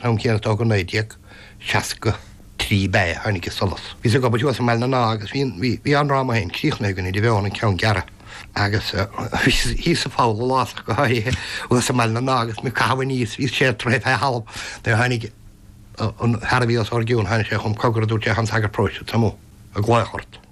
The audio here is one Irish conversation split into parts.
am céanna atá againn 1963 ba ea a tháinig i solas. Bhíos ag obair thuas i mBaile na nÁth agus bhí bhí an dráma féin críochnaithe againn idir mheon an ceann gearra agus bhíos thíos sa pholl an lá so go háirithe thuas i mBaile na nÁth agus mé ag caitheamh aníos bhíos sé troithe fé thalamh nuair a tháinig an fear a bhí os ár gcionn tháinig sé chugam cogar a dúirt sé tá an sagart paróiste amuigh ag glaoch ort.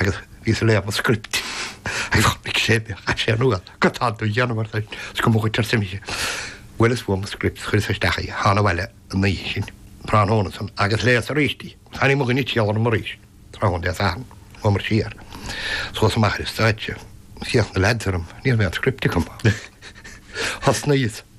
agus bhíos ag léamh an script agus chonaic sé mé, chaith sé an fhuath go tall don gheanamar san is go mbuachaint ar is d'imigh sé. Bhuel fuaireas mo script, chuireas isteach í, thána abhaile an oíche sin, tráthnóna san, agus léas aríst í. Tháinig mo dhuine ag triall orm arís, tráthnóna Dé Sathairn, chuamar siar suas amach ar an stáitse, d'fhéach na leaids orm, ní raibh aon script agam. Thosnaíos.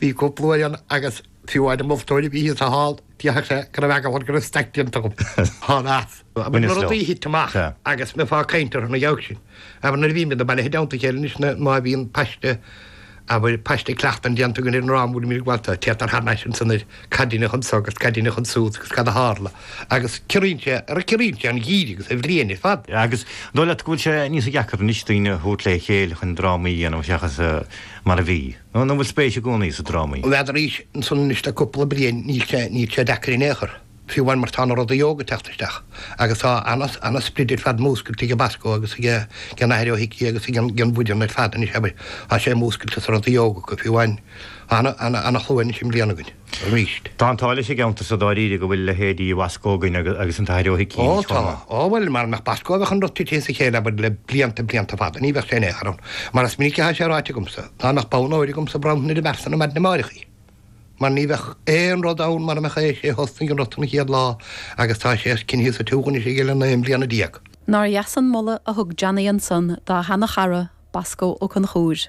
Bhí cúpla uair ann agus fiú amháin an moltóir a bhí thíos sa halla, déarfadh sé go raibh eagla air go raibh staic déanta agam. Thána as. Abair na rudaí a thit amach agus mbeifeá ag caint orthu, ná geall sin. Abair nuair a bhímid bailithe i dteannta a chéile anois nó má bhíonn paiste, abair paiste cleachtan déanta againn ar an ndráma, bhuel, bímid ábalta teacht thar n-ais ansan ar. Cad a deineadh anso agus cad a deineadh ansúd agus cad a tharla agus ciorraíonn sé agus ciorraíonn sé an geimhreadh agus an bhliain ar fad. Agus an dóigh leat go bhfuil sé níos deacra anois daoine a thabhairt le chéile chun drámaí a dhéanamh seachas mar a bhí? Nó an bhfuil spéis i gcónaí sa drámaí? N'fheadar arís, ansan anois le cúpla bliain níl sé, níl sé deacair in aon chor, fiú amháin mar tá na rudaí óga ag teacht isteach agus tá ana, ana sprid ar fad múscailte ag Basco agus ag an Athair Ó hIcí agus ag an, ag an mbuíon ar fad anois abair, tá sé múscailte sa rudaí óga acu fiú amháin. Ana chlú anois i mbliana againn arís. Tá an t-ádh leis an gceantar so dáiríre go bhfuil leithéidí Bhasco againn agus an tAthair Ó hIcí. Ó tá. Ó bhuel, mara mbeadh Basco bheadh an rud tite as a chéile abair le blianta blianta fada. Ní bheadh sé in aon chor ann. Mar is minic athá sé ráite agamsa, dá mbeadh bonn óir agamsa bhronnfainn ar an bhfear san ar maidin amáireach í. Mar ní bheadh aon rud ann mara mbeadh é. Is é a thosnaigh an rud san an chéad lá agus tá sé coinnithe sa tsiúl anois aige le naoi mbliana déag. Nár dheas an moladh a thug Johnny ansan dá sheana chara, Basco Ó Conchúir.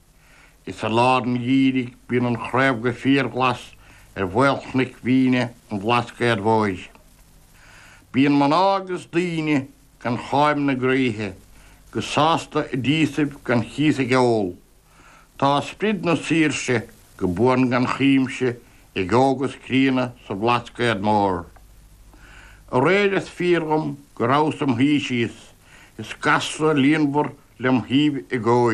Is i lár an gheimhridh bíonn an chraobh go fíorghlas ar mhaolchnoic mhíne an Bhlascaod Mhóir. Bíonn mná agus daoine gan cháim na gcroíthe go sásta i dtíosaibh gan chíos ag ól. Tá sprid na saoirse go buan gan chuimse ag óg is críonna sa Bhlascaod Mór. Aréir is fíor dhom go rabhas im shuí síos is gasra líonmhar lem thaobh i gcóir.